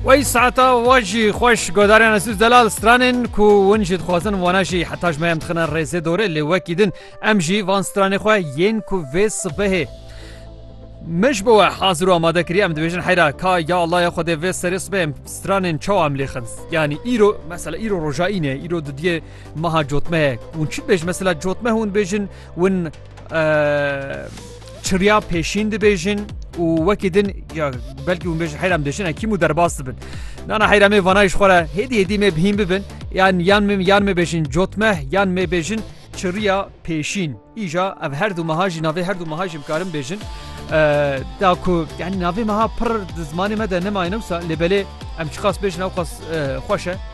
Wey saeta we jî xweş godarên Esûs Delal stranên ku win jî dixwazin wana jî heta ji me em dixine rêzê dorê lê wekî din em jî van stranê xwe yên ku vê sibehê Mij bi we hazir û amade kiriye em dibêjin heyra ka ya Allah ya Xwedê vê serê sibê em stranên çawa em lê xins yanî îro mesela îro roja îne îro didiye meha cotmehek hûn çi bêj mesela cotmeh hûn bêjin win çirya pêşîn dibêjin û wekî din ya belkî hûn bêjin heyram dêşin ekîm û derbas dibin. Nana heyramê vanayî ji xwe re hêdî hêdî me bihîn bibin yan yan min yan me bêjin cotmeh yan me bêjin çirya pêşîn. Îja ev her du meha jî navê her du meha jî bikarin bêjin. Da ku yani navê meha pir di zimanê me de nemayne wisa lê belê em çiqas bêjin ew qas xweş e.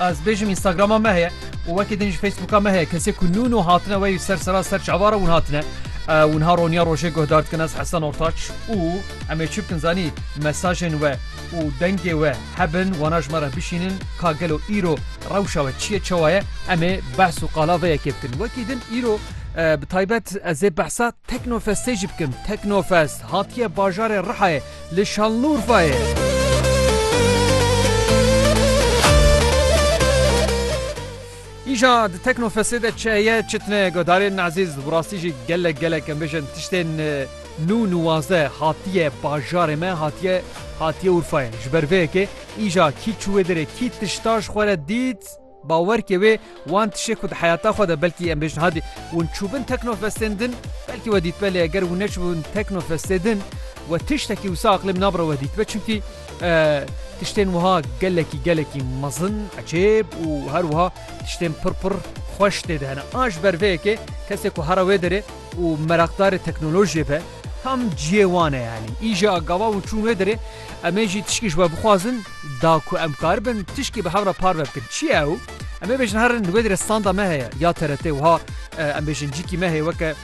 Ez dibêjim Instagrama me heye û wekî din jî Facebooka me heye. Kesê ku nû nû hatine wey ser sera ser çavar e wan hatine. E, Wan ha roniya rojê guhdar dikin ez Hesen Ortaç û em ê çi bikin zanî mesajên we û dengê we hebin wana ji me re bişînin ka gelo îro rewşa we çi ye çawa ye em ê behs û qala vê yekê bikin. Wekî din îro e, bi taybet ez ê behsa Teknofestê jî bikim. Teknofest hatiye bajarê Rihayê Li Şanlurfayê. Îja di Teknofestê de çi heye çi tune guhdarên ezîz û bi rastî jî gelek gelek em bêjin tiştên nû nuwaze hatiye bajarê me hatiye hatiye Urfayê. Ji ber vê yekê îja kî çû wê derê kî tişta ji xwe re dît, Bawerkê wê wan tişê ku di heyata xwe de belkî em bêjin hadî wan çûbin teknofestên din belkî we dîtbe lê eger wan neçûbin teknofestê din we tiştekî wisa aqlê min nabire we dîtbe çimkî tiştên wiha gelekî gelekî mezin ecêb û her wiha tiştên pir pir xweş tê de hene a ji ber vê yekê kesê ku hera wê derê û meraqdarê teknolojiyê be tam ciyê wan e yanî îje a gava wan çûn wê derê Em ê jî tişkî ji we bixwazin, da ku em karibin tişkî bi hev re parve bikin. Çi ye ew? Em ê bêjin herin li wê dir e standa me heye ya TRT wiha em bêjin cîkî me heye weke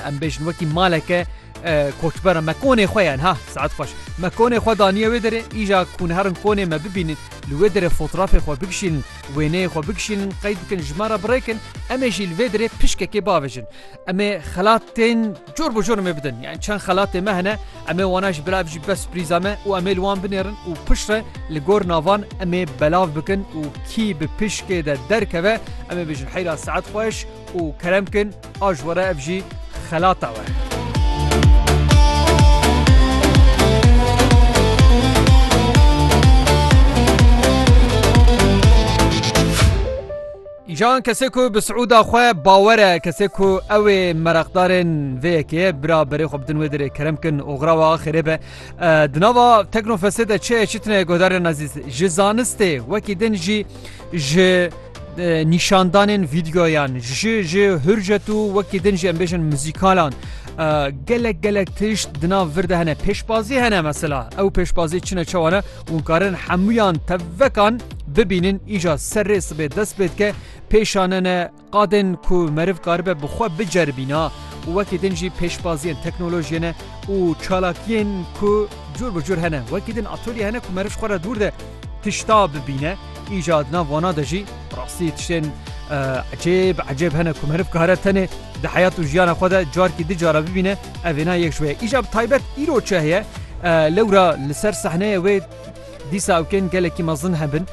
em bêjin wekî maleke koçbera me konê xwe yan ha saet xweş me konê xwe daniye wê derê îja kûn herin konê me bibînin li wê derê fotrafê xwe bikişînin wêneyê xwe bikişînin qey bikin ji me re birêkin em ê jî li vê derê pişkekê bavêjin em ê xelatên Cor bi cor em ê bidin. Yani çend xelatê me hene em ê wana ji bila bijî bes surprîza me û em ê li wan binêrin û piştre li gor navan em ê belav bikin û kî bi pişkê de derkeve em ê bijin heyra saet xweş û kerem kin a ji were ev jî xelata we. Îjan kesê ku bi Siûda xwe bawer e, kesê ku ew ê mereqdarên vê yekê ye, bira berê xwe bidin wê dirê, kerem bikin û xira we axirê be. Di nava Teknofestê de çi heye çi tune ye guhdarên ezîz? Ji zanistê wekî din jî ji nîşandanên vîdyoyan ji ji hurjet û wekî din jî em bêjin muzîkalan gelek gelek tişt di nav vir de hene pêşbazî hene mesela ew pêşbazî çine çewane Hûn karin hemûyan tevvekan bibînin îja serrê sibê dest pê dike pêşanene qadên ku meriv karibe bi xwe biceribîna û wekî din jî pêşbaziyên teknolojiyê ne û çalakiyên ku cûr bi cûr hene wekî din atolye hene ku meriv ji xwe re dûr de tişta bibîne îja di nav wana de jî rastî tiştên ecêb ecêb hene ku meriv kare tenê di heyat û jiyana xwe de carkî di cara bibîne Ev vêna yek ji we ye. Îja bi taybet îro çi heye? Lewra li ser sehneyê wê dîsa ew kên gelekî mezin hebin.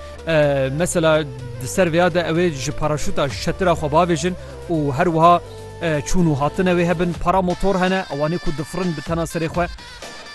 Mesela di ser vêya de ew ê ji paraşûta şetira xwe bavêjin û her wiha çûn û hatine wê hebin. Para motor hene ewanê ku difirin bi tena serê xwe.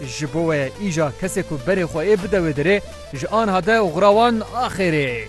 Ji bo we îja kesê ku berê xwe ê bide wê derê ji anha de oxira wan axêrê.